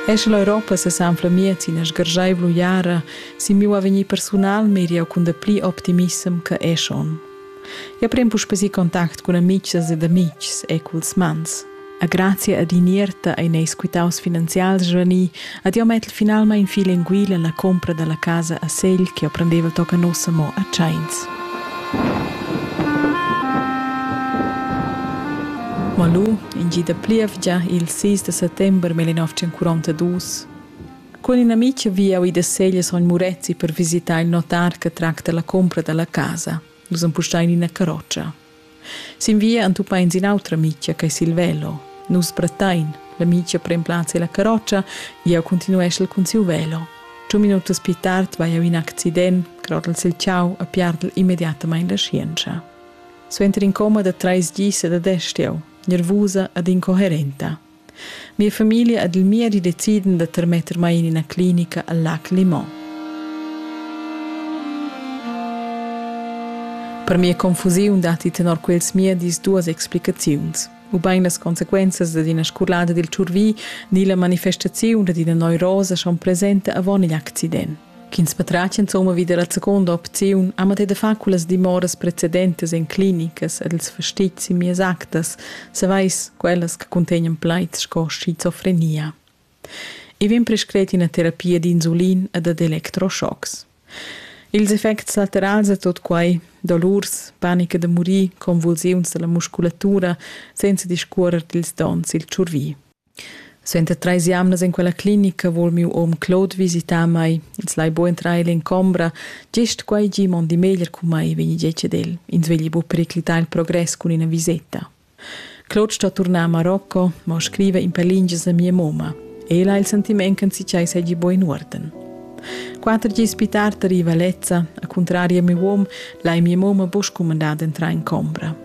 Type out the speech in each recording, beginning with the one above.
Esch l'Europa sesanfla miez ina sgarscheivla uiara sin miu avegnir persunal meri jeu cun dapli optimissem che esch onn. Jeu pren puspè si contact cun amicas ed amitgs e culs mans. A grazia ad in'ierta ein ei squittaus finanzials svanì Ad jau mettel finalmein fi lenguil alla compra dalla casa a Segl che ho prendeva tocca nossa mo a Tscheins. Mo lu, in gida plievgia il 6 de settember 1942, con in amic via ui da Segl sogn Murezzi per visitar il notar che tracta la compra dalla casa. Nus empustain ina carroccia. Sin via entupains in'autra mitgia che sil velo. Nus brattain, la mitgia pren plaz ella carrotscha, jeu continueschel cun siu velo. Giu minutas pli tard vai jau in accident, grodel sil chau e piardel immediatamain la scienza. Suenter in coma da trais dis ed adest jau, nervusa ed incoherenta. Mia famiglia ed il miedi deciden da termetter mai in ina clinica al Lac Limon. Per mia confusiun datti tenor quels miedis duas explicaziuns ubain las consequenzas dad ina scolada dil tschurvi ni la manifestaziun dad ina neurosa schon presenta avon igl accident. ch'ins patratg insomma vi dalla seconda opziun ha mai da far cullas dimoras precedentas en clinicas ed els fastizzi mies actas, savais quellas che contegnan plaids sco schizofrenia. I vegn prescret ina terapia d'insulin e dad electroschocks. Ils effects laterals a tot quai, dolurs, panica da murir, convulsiuns dalla musculatura, senza discuorer dils dons il tschurvi. Suenter treis jamnas en quella clinica vul miu um Claude visitar mei. Els lai buca entrar ella en combra. Gest quei gi mondi meglier cun mei, vegni detg ed el. Ins vegli bu periclitar il progress cun ina viseta. Claude sto turnar a Marocco, ma scriva in per lingias a mia mamma. Ella ha il sentiment che si segui buin uorden. Quatter gis più tardi arriva Lezza, a contrario a mio uom, lai mia mamma busch cumandar d'entrar in combra.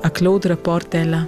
A Claude rapporta ella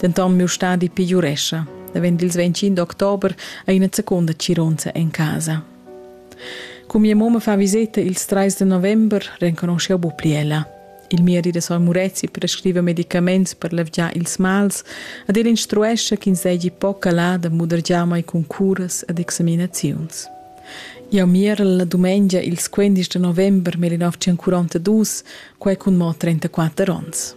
Denton miu stadi pegiurescha. Da vend ils 25 d'october ha ina seconda cironza en casa. Cu mia mamma fa viseta ils 3 de november, renconosceu bu pli ella. Il miedi da Soy Murezi prescriva medicaments per levgiar ils mals, ad el instruescha ch'ins deigi poca là da mudergiar mai cun curas ed examinaziuns. Jau mierel la dumengia ils 15 de november 1942, quai cun mo 34 onns.